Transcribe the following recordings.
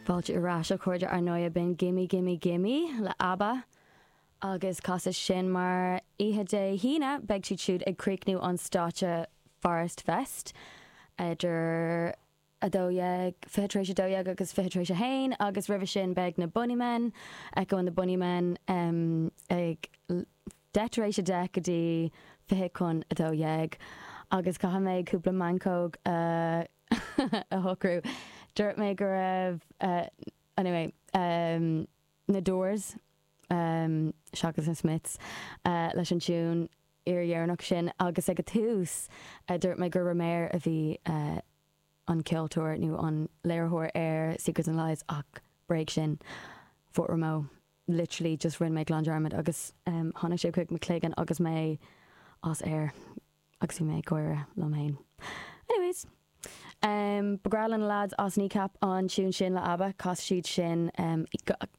Fáilte ar ais a chairde ar ndóigh b'in Gimme Gimme Gimme le Abba agus chas mé sin mar oíche Dé hAoine beidh siad siúd ag críochnú an stáitse Forest Fest idir a 12, 20 tar éis a dó dhéag agus 20 tar éis a haon agus roimhe sin beidh na Bonneymen, Echo and the Bunnymen ag 10 tar éis a deich go dtí 20 chun a dó dhéag agus caithfidh mé cúpla meancóg a. a shocrú. Dúirt mé go raibh, anyway, na Doors seachas na Smiths leis an tiún fhíordheireanach sin agus ag an tús dúirt mé gur Romare a bhí an ceoltóir nó an léiritheoir ar Secrets and Lies ach bréag sin Fort Romeo literally just rinne mé glan dearmad agus tháinig sé chuig mo chloigeann agus mé as aer. agus bhí mé ag gáire liom fhéin. Anyways, em, ba bhreá le na lads as Kneecap an tiún sin le Abba, casadh siad sin, em,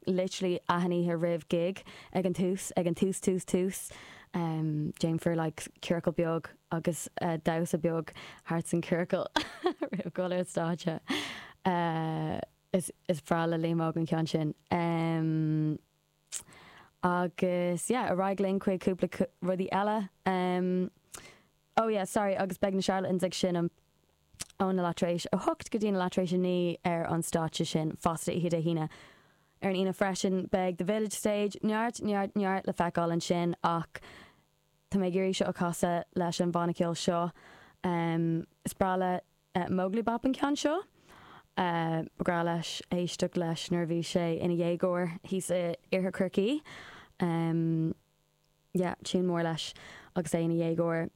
literally achan oíche roimh gig, ag an tús, ag an tús tús tús, em, déanfar like ciorcal beag agus damhsa beag thart san ciorcal roimh dhul ar an stáitse. Eh, is, is breá le Liam Óg an ceann sin. Em. Agus yeah, ar aghaidh linn chuig cúpla rudaí eile. Oh yeah, sorry, agus beidh na Charlatans ag seinm óna leath tar éis a hocht go dtína leath tar éis a naoi ar an stáitse sin fosta oíche Dé hAoine. Ar an Aoine freisin beidh The Village Stage, neart, neart, neart le feiceáil ansin ach tá mé ag iarraidh seo a chasadh leis an bhanna ceoil seo. Is breá le. Móglaí Bap an ceann seo. Ba bhreá leis éisteacht leis nuair a bhí sé ina dhéagóir thíos in Iarthar Chorcaí. Yeah, tune mór leis agus é ina dhéagóir.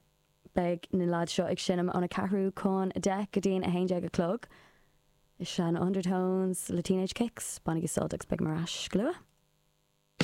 Beidh na leaids seo ag seinm óna ceathrú chun a deich go dtí'n a haon déag a chlog. Is ea, na Undertones le Teenage Kicks. Bainigí sult agus beidh mé ar ais go luath.